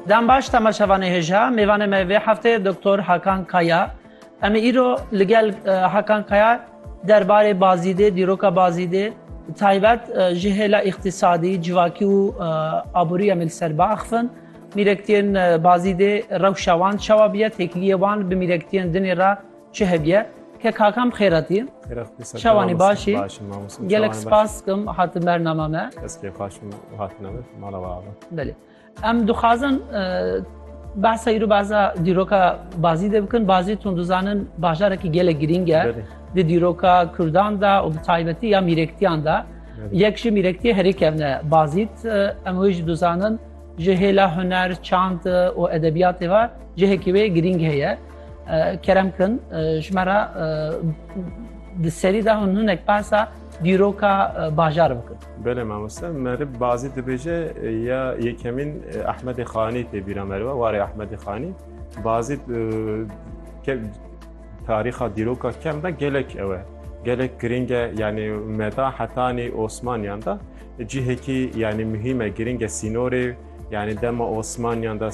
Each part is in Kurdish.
Dem baş temaşevanê hêja. Mêvanê me vê hefteyê Doktor Hakan Kaya. Em ê îro li gel Hakan Kaya derbarê Bazîdê, dîroka Bazîdê bi taybet ji hêla îqtîsadî, civakî û aborî em ê li ser biaxivin. Mîrektiyên Bazîdê rewşa wan çawa bûye, têkiliyê wan bi mîrektiyên dinê re Çi hediye? Ke kakam bi xêr hatî. Şewanê baş î. Gelek spas dikim hatin ber nama me. Ez kêfxweş bûm û hatine min mala we ava. Belê. Em dixwazin behsa îro behsa dîroka Bazî de bikin. Bazî tun dizanin bajarekî gelek girîng e. Belê. Di dîroka Kurdan de û bi taybetî ya mîrektiyan de. Yek ji mîrektiyê herî kevne Bazît. Em wê jî dizanin ji hêla huner, çand û edebiyatê ve cihekî wê girîng heye. Kerem kin ji me re di serî de hûn hinek behsa dîroka bajar bikin. Belê mamoste merib bazî dibêje ya yekemîn Ehmedê Xanî tê bîra meriba warê Ehmedê Xanî bazî tarîxa dîroka kem de gelek ew e. Gelek girîng e yanî meda hetanî Osmaniyan de cihekî yanî muhîm e girîng e sînorê Yani dema Osmanyan da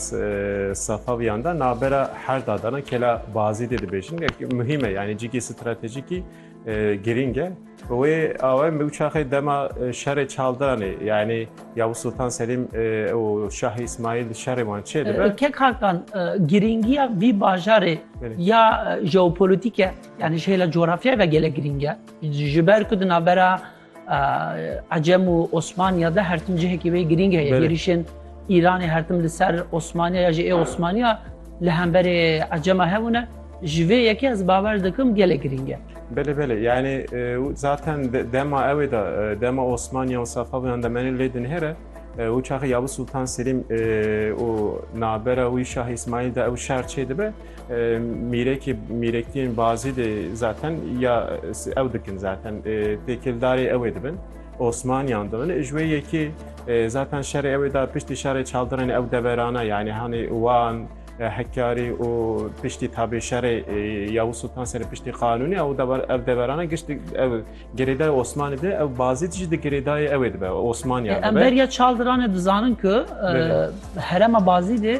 Safavyan da nabera her dadana kela bazî de dibêjin gelkî muhîm e yani cîkî stratejîkî girîng e wê awe me uçaxê dema şerê çaldanê yani Yavuz Sultan Selim û Şah İsmail şerê wan çê dibe kek hakan girîngiya vî bajarê ya jeopolitîk e yani ji hêla coğrafyayê ve gelek girîng e ji ber ku di navbera Ecem û Osmaniya de her tim cihekî wê girîng heye êrîşên Îranê her tim li ser Osmaniya ya jî ê Osmaniya li hemberê Ecema hebûne ji vê yekê ez bawer dikim gelek girîng e. Belê belê yani zaten dema ewê de dema Osmaniya û Safavîyan de menê lê dinêre û çaxê Yavuz Sultan Selîm û navbera wî Şah Îsmaîl de ew şer çêdibe Mîrekê mîrektiyên bazî de zaten ya ew dikin zaten têkildarê ew ê dibin. Osmaniyan dibin. Ji wê yekê zaten şerê ew ê da piştî şerê çavdirên ew deverana yani hanê wan Hekarî û piştî tabê şerê Yavuz Sultan Selîm piştî qanûnê ew dever ev deverana giştî ew girêdayê Osmanî de ew bazî jî di girêdayê ew ê dibe Osmaniyan dibe. Em beriya çavdiran e dizanin ku herema bazî de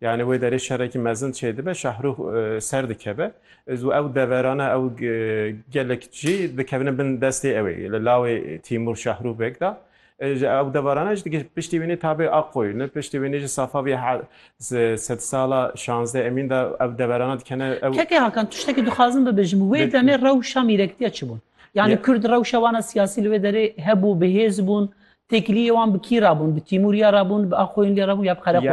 Yanî wê derê şerekî mezin çêdibe, Şahrûx ser dikeve û ew deverane ew gelek jî dikevine bin destê ewê li lawê Tîmûr Şahrûx Beg de. Ew deverane jî digihîje piştî wînê ta bê Aqoyû ne piştî wînê jî safa vê sedsala şanzdeh Emîn de ew deverane dikene ew. Keke Hakan tiştekî dixwazim bibêjim wê demê rewşa mîrektîya çi bûn? Yanî Kurd rewşa wan a siyasî li wê derê hebû, bi hêz bûn, têkiliyê wan bi kî re bûn? Bi Tîmûr ya re bûn, bi Aqoyûn ya re bûn ya bi Qereqoyû?